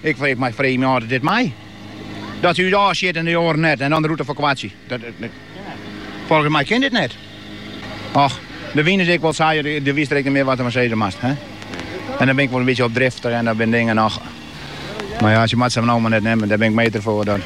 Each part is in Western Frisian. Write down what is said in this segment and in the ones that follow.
Ik freech my freegjen âld dit mei. Dat se út ôfsjit en de oaren net en dan de rûte ferkoartsje. Folgens my kin dit net. Och, de wyn is ek wol sa, do witst der ek net mear wat fan sizze moatst. En dan bin ik wol in bytsje opdriftich en dat binne dingen noch. Mar ja, se moatte se no mar net nimmen, dêr bin ik meter foar.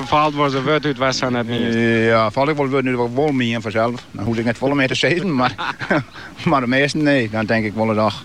Faalt wolris in wurd út wat sa net mienst. Ja, faalt ek wol wurden út wat ik wol mien fansels. Dan hoechst ek net folle mear te sizzen, mar de measten nee. Dan tink ik wolris och.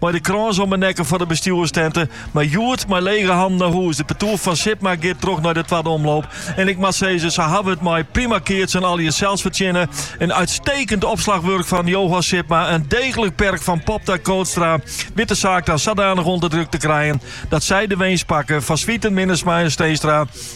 Mei de krâns om 'e nekken foar de bestjoerstente. Mar hjoed, mei lege hannen nei hûs. De partoer fan Sipma giet troch nei de twadde omloop. En ik moat sizze, se hawwe it mei prima keatsen en allegear sels fertsjinne. In uitstekend opslachwurk fan Johan Sipma, in deeglik perk fan Popta, Kootstra wit de saak dan sadanich ûnder druk te krijen dat sy de winst pakke fan Zwieten, Minnesma en Steenstra.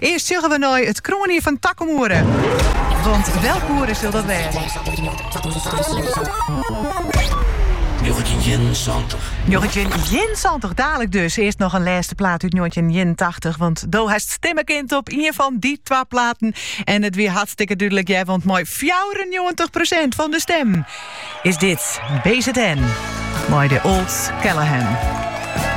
Earst sjogge we nei it kroanjier fan takom oere. Want welk oere sil dat wêze? Njoggentjin ienensantich. Dadelijk dus earst noch in lêste plaat út njoggentjin ienentachtich. Want do hast stimme kind op ien fan dy twa platen. En it wie hartstikke dúdlik hear, want mei 94 prosint fan de stimmen is dit BZN mei The Old Calahan.